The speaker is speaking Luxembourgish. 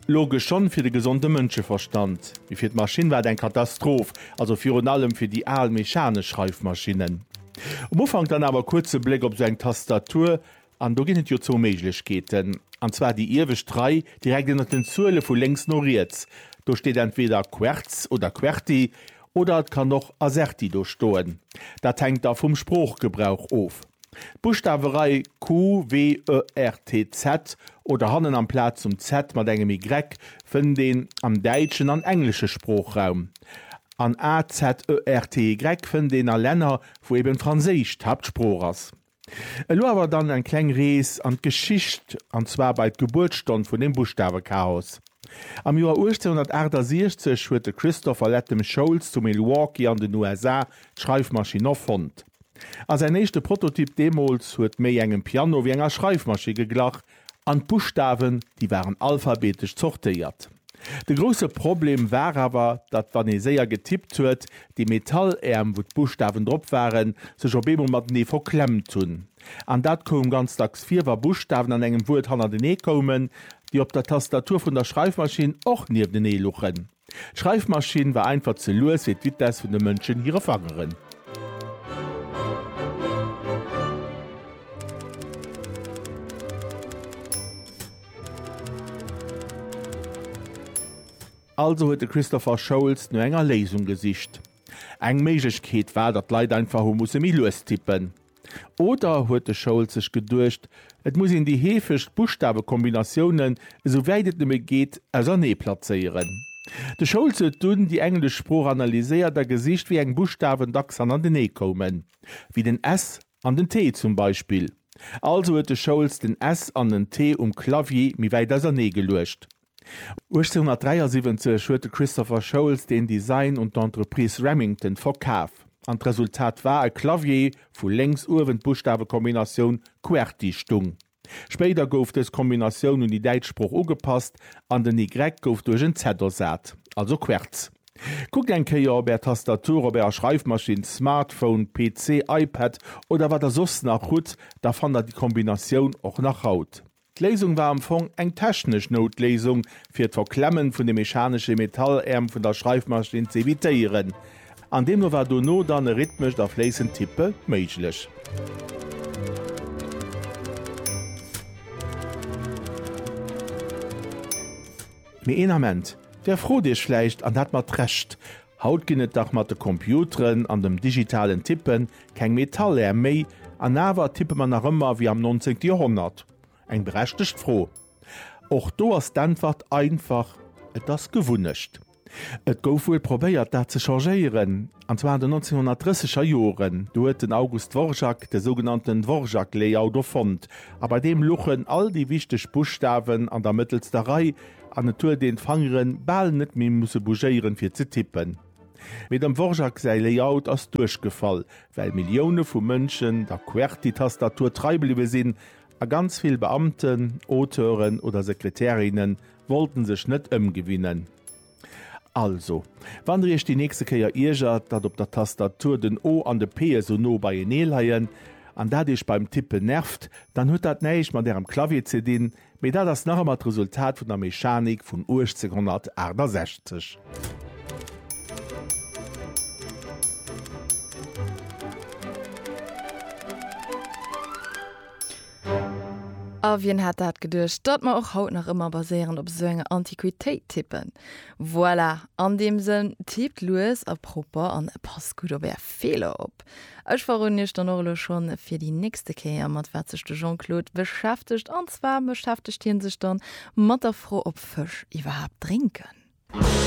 Logesch schonn fir de gesonde Mënscheverstand, mee fir d'Maschinn war et eng Katastroph, also virun allem fir déi al mechanesch Schreifmaschinnen. Um Ufank dann awer kuerz e Bléck op esou eng Tastatur, an do ginn et jo zwou Méiglechkeeten, an zwar déi iewescht Rei direkt ënnert den Zuele vu lénks no riets, do steet entweder Quertz oder Querti, oder et kann och Azerty do stoen, dat hänkt da vum Sproochgebrauch of. D'Buschtawerei QWERTZ oder hannen amplaz zum Z mat engem Y fënnt een am däitschen an englesche Sproochraum. An AZERTY fënnt een a Länner, wou eben Franséisch d'Haaptsprooch ass. Elo awer dann eng kleng Rees an d'Geschicht, an zwar bei d'Gebuertsstonn vun dem Buschtawechaos. Am Joer 1868 huet de Christopher Latham Sholes zu Milwaukee an den USA d'Schreifmaschinn erfonnt. A säin éischte Prototyp deemools huet méi engem Piano wéi enger Schreifmaschi geglach, an d'Buschtawen, déi waren alphabetesch zortéiert. De grousse Problem war awer, datt wann ee séier getippt huet, déi Metalläerm, wou d'Buschtawen drop waren, sech op eemol matenee verklemmt hunn. An dat koum ganz dacks vir, wa Buschtawen an engem Wuert hannertenee koumen, déi op der Tastatur vun der Schreifmaschinn och nieftenee luchen. D'Schreifmaschinn war einfach ze lues fir d'Vitesse vun de Mënschen hire Fangeren. Also huet de Christopher Sholes no enger Léisung gesicht. Eng Méiglechkeet war, datt d'Leit einfach hu musse méi lues tippen. Oder huet de Schold sech geduecht, et muss een déi heefegst Buschtawekombinatiounen, esou wäit et nëmme geet, ausernee plazéieren? De Schold huet dunn déi englesch Sprooch analyséiert a gesicht, wéi eng Buschtawen dacks hannertenee koumen, wéi den S an den T zum Beispill. Also huet de Schold den S an den T um Clavier méi wäit ausernee geluecht. 1873 huet de Christopher Sholes den Design un d'Entreprise Remington verkaf, an d'Resultat war e Clavier, wou lénks uewen d'Buschtawekombinatioun Qwerty stung. Spéider gouf dës Kombinatioun un déi däitsch Sprooch ugepasst, an den Y gouf duerch en Z ersat, also Querz. Kuckt eng Kéier op Är Tastatur, op Ärer Schreifmaschinn, Smartphone, PC, iPad oder wat Der soss nach hutt, da fannt Der déi Kombinatioun och nach haut. D'Léisung war am Fong eng technesch Noutléisung, fir d'Verklemmen vun de mechanesche Metalläerm vun der Schreifmaschinn ze evitéieren. An deemno war dono dann e rhythmescht a fléissend Tippe méiglech. Mee een Ament, Der frot Iech vläicht, an dat mat Recht, Haut ginn et dach mat de Computeren an dem digitalen Tippen Keng Metallär méi, an awer tippe mer nach ëmmer wéi am 19. Joerhonnert? Eng berechtegt Fro. Och do ass d'Äntwert einfach, Et ass Gewunnecht. Et gouf wuel probéiert, dat ze changéieren, an zwar an den 1930 er Joren. Do huet den August Dvorak de sougenannten Dvorak-Layout erfonnt, a bei deem luchen all déi wichteg Buschtawen an der mëttelster Rei, an et huet een d'Fangeren bal net méi musse bougéieren, fir ze tippen. Mee dem Dvorak säi Layout ass duerchgefall, well Millioune vu Mënschen der Qwerty-Tastatur trei bliwwe sinn, a ganz vill Beamten, Auteuren oder Sekretärinne wollten sech net ëmgewinnen. Also, wann der iech déi nächste Kéier iergert, datt op der Tastatur den O an de P esou no beienee leien, an dat iech beim Tippen nervt, dann huet dat näischt mat ärem Clavier ze dinn, Mee dat ass nach ëmmer d'Resultat vun der Mechanik vun 1868. A wien hätt dat geduecht, datt mer och haut nach ëmmer baséieren op esou enger Antiquitéit tippen. Voilà, an deem Sënn, tippt lues a propper an passt gutt op är Feeler op. Ech verroden iech dann och elo schonn fir déi nächste Kéier, mat wat sech de Jean-Claude beschäftegt. An zwar beschäftegt hie sech dann mat der Fro, ob Fësch iwwerhaapt drénken.